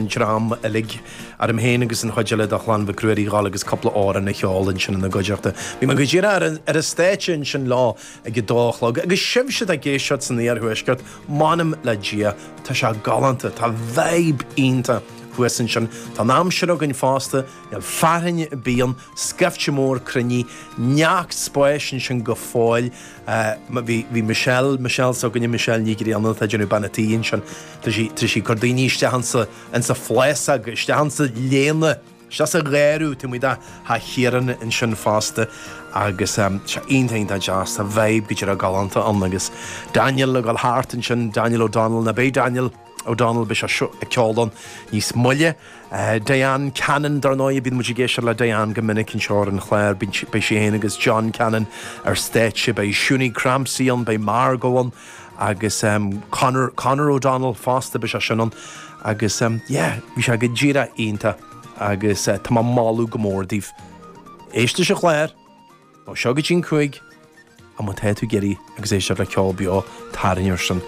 ndream uilig, orm féin agus an chuid eile de chlann Mhic Ruairí, dhul agus cúpla amhrán a cheol ansin ina gcuideachta. Bhí mé go díreach ar an stáitse ansin leo ag a dó a chlog. Agus sibhse atá ag éisteacht san iarthuaisceart, m'anam le Dia, tá sé galánta, tá vibe iontach thuas ansin. Tá an aimsir againn fosta, níl fearthainn ar bith ann, scaifte mór cruinnithe, neart spáis ansin go fóill. Bhí Michelle, Michelle s'againne, Michelle Nic Grianna atá ag déanamh bean a' tí ansin. Tá sí, tá sí ag cur daoine isteach ansa, ansa phléascadh, isteach ansa léana, isteach sa ghéarú, tuigimid, a' Chiaráin ansin fosta. Agus sea, iontach, iontach deas, tá vibe go deireadh galánta ann agus Daniel ag dul thart ansin, Daniel O'Donnell, ní bheidh Daniel, O'Donnell, beidh seisean ag ceol ann níos moille. Diane Cannon, dar ndóigh, bíonn muid ag éisteacht le Diane go minic anseo ar an chlár, beidh sí féin agus John Cannon ar stáitse, beidh Shunie Crampsey ann, beidh Margo ann agus Conor, Conor O'Donnell fosta, beidh seisean ann agus yeah, bhí sé go díreach iontach agus tá mé ag moladh go mór daoibh éisteacht leis an chlár. Ó seo go dtí'n cúig, má tá tú ag iarraidh a ghabháil ag éisteacht le ceol beo, tarraing air sin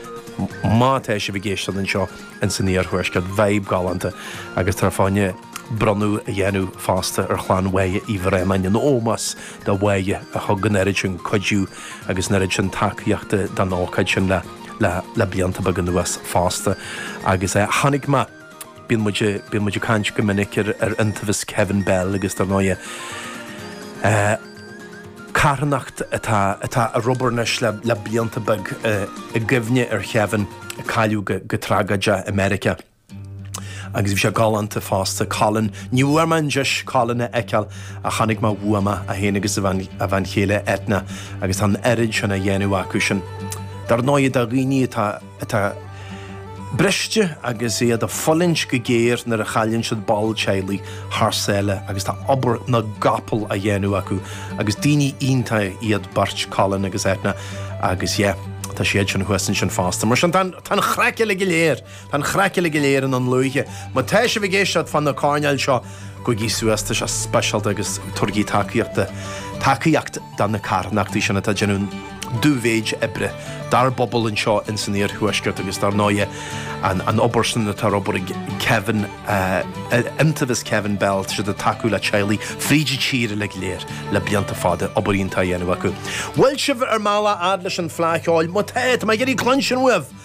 má tá sibh ag éisteacht anseo in san iarthuaisceart, vibe galánta agus táthar ag gabháil bronnadh a dhéanamh fosta ar chlann Moya Uí Bhraonáin in ómós do Moya a thug an oiread sin cuidiú agus an oiread sin tacaíochta don ócáid sin le le le blianta beaga anuas fosta agus tháinig mé Bíonn muid, bíonn muid ag caint go minic ar, ar Iontaobhas Kevin Bell agus dar ndóigh eh, carthanacht atá, atá ag obair anois le, le blianta beag eh, i gcuimhne ar Chevin a cailleadh go, go tragaideach i Meiriceá. Agus bhí sé galánta fosta, Colin, ní bhfuair mé deis Colin a fheiceáil ach tháinig mé ar a mhamaí féin agus a bhean, a bhean chéile Eithne agus tá an oiread sin á dhéanamh acu sin. Dar ndóigh, do dhaoine atá, atá briste agus iad ag fulaingt go géar nuair a chailleann siad ball teaghlaigh thar sáile agus tá obair na gcapall á dhéanamh acu agus daoine iontach iad beirt Colin agus Eithne agus yeah tá siadsan thuas ansin fosta. Mar sin tá an chraic uilig go léir, tá an chraic uilig go léir i nDún Lúiche. Má tá sibh ag éisteacht fá na coirnéil seo gabhaigí suas, tá sé speisialta agus tabhairigí tacaíocht tacaíocht do na carthanachtaí sin atá ag déanamh. an-mhéid oibre, dár bpobal anseo ins an Iarthuaisceart agus dár ndóigh an obair san atá ar obair ag Kevin, Iontaobhas Kevin Bell tá siad ag tacú le teaghlaigh fríd an tír uilig go léir le blianta fada, obair iontach á dhéanamh acu. Bhfuil sibh ar mbealach fhad leis an Fhleadh Cheoil? Má tá, tá mé ag iarraidh cluinstin uaibh!